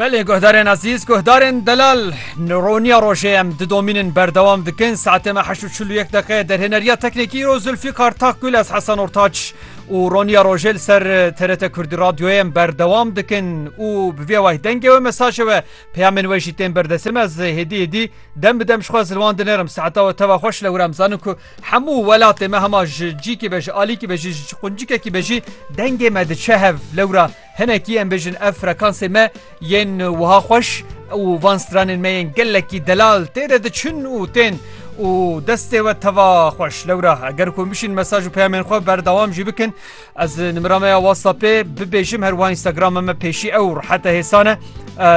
Belê guhdarên ezîz guhdarên delal roniya rojê em di domînin berdewam dikin saetê me heşt û çil û yek deqe derhêneriya teknekî îro Zulfîqar Takgul ez Hesen Ortaç û roniya rojê li ser TRT Kurdî radyoyê em berdewam dikin û bi vê wayî dengê we mesajê we peyamên we jî tên berdesê me ez hêdî hêdî dem bi dem ji xwe zilwan dinerim saeta we teva xweş lewre em zanin ku Hemû welatê me hema ji cîkê be ji alîkî be jî ji quncikekî be jî dengê me diçe hev. Lewra hinekî em bêjin ev frekansê me yên wiha xweş û van stranên me yên gelekî delal tê de diçin û tên û destê we teva xweş. Lewra eger ku em bişîn mesaj û peyamên xwe berdewam jî bikin, Ez nimera me ya WhatsAppê bibêjim her wiha Instagramê me pêşî ew rihete hêsan e.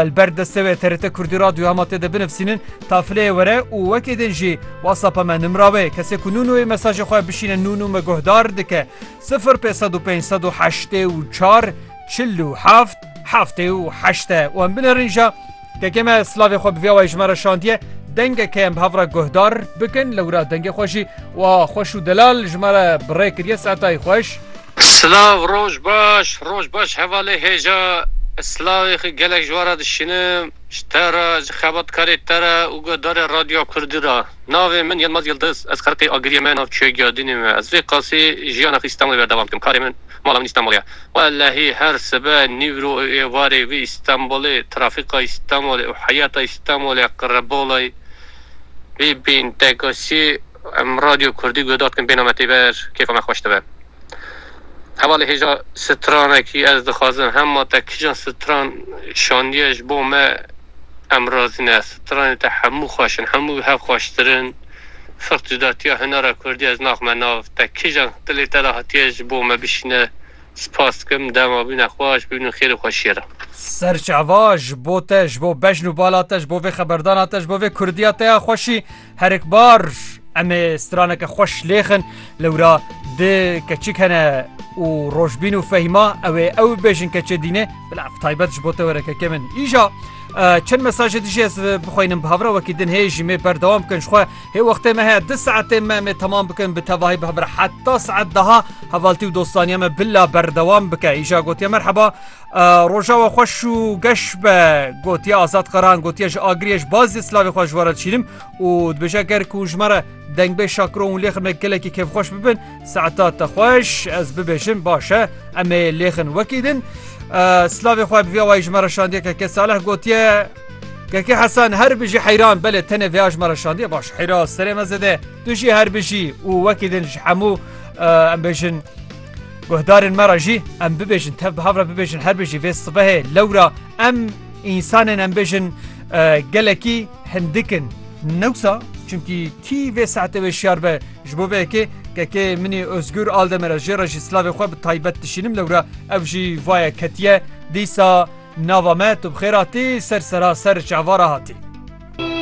Li ber destê wê TRT Kurdî Radyo hema tê de binivsînin tafileyê were û wekê din jî WhatsAppa me nimira wê kesê ku nû nûyê mesajê xwe bişîne nû nû me guhdar dike sifir pê sed û pênc sed û heştê û çar çil û heft heftê û heşte û em binerin ja Kekê me slavê xwe bi vê awayî ji me re şandiye, dengek heye em bi hev re guhdar bikin, lewra dengê xwe jî wiha xweş û delal ji me re bi rê kiriye Seetayî xweş. Silav roj baş roj baş hevalê hêja silavê xwe gelek ji we re dişînim ji te re ji xebatkarê te re û guhdarê radyoya kurdî re navê min Yilmaz Yildiz ez xelqê agiriyê me navçeya Giyadînê me ez vê qasî jiyana xwe Îstanbulê berdewam dikim karê min Mala min Îstanbulê ye. Wellehî her sibe, nîvro û êvarê vê Îstanbulê, trafîka Îstanbulê û heyata Îstanbulê qirebolayê vê bên teksiyê em Radyo Kurdî guhdar dikin bêhna me têber kêfa me xweş dibe. Hevalê hêja stranekî ez dixwazim hema te kijan stran şandiye ji bo me em razî ne. Stranên te hemû xweş in, hemû bi hev xweştir in. Fiq cudatiya hunera kurdî ez naxme nav te kijan dilê te de hatiye ji bo me bişîne spas dikim dema bîne xweş bibînin xêrê xwe şêre. Serçava ji bo te ji bo bejn û bala te ji bo vê xeberdana te ji bo vê kurdiya te ya xweşî herikbar em ê straneke xweş lêxin lewra di keçik hene û rojbîn û fehîma ew ê ew bêjin keçê dînê bila ev taybet ji bo te were keke min îja Çend mesajê dijî ez bixwînim bi hevra wekî din hê jî mê berdewam bikin ji xwe hê wextê me heye di saetê me mê temam bikin bi tevahî bi hevra heta saet daha hevaltî û dostaniya me bila berdewam bike îja gotiye merheba roja we xweş û geş be gotiye azad qeran gotiye ji agiriye ji bazê slavê xwe ji were çînim û dibêje ger ku ji me re dengbê şakron û lêxirme gelekî kêfxweş bibin Saeta te xweş ez bibêjin baş e em ê lêxin wekî din. Slavê xwe bi vê awayî ji me re şandiye keke Saleh gotiye Keke Hesan her bijî heyran belê tenê vêya ji me re şandiye baş heyra serê me zede tu jî her bijî û wekî din ji hemû em bêjin guhdarên me re jî em bibêjin tev bi havre bibêjin her bijî vê sibehê lewra em însanên em bêjin gelekî hindikin newsa çimkî kî vê saete wê şiyar be Ji bo vê yekê kekê minî Ozgur al de me re jê re jî silavê xwe bi taybet dişînim lewre ev jî vaye ketiye dîsa nava me tu bi xêr hatî ser sera ser çavara hatî.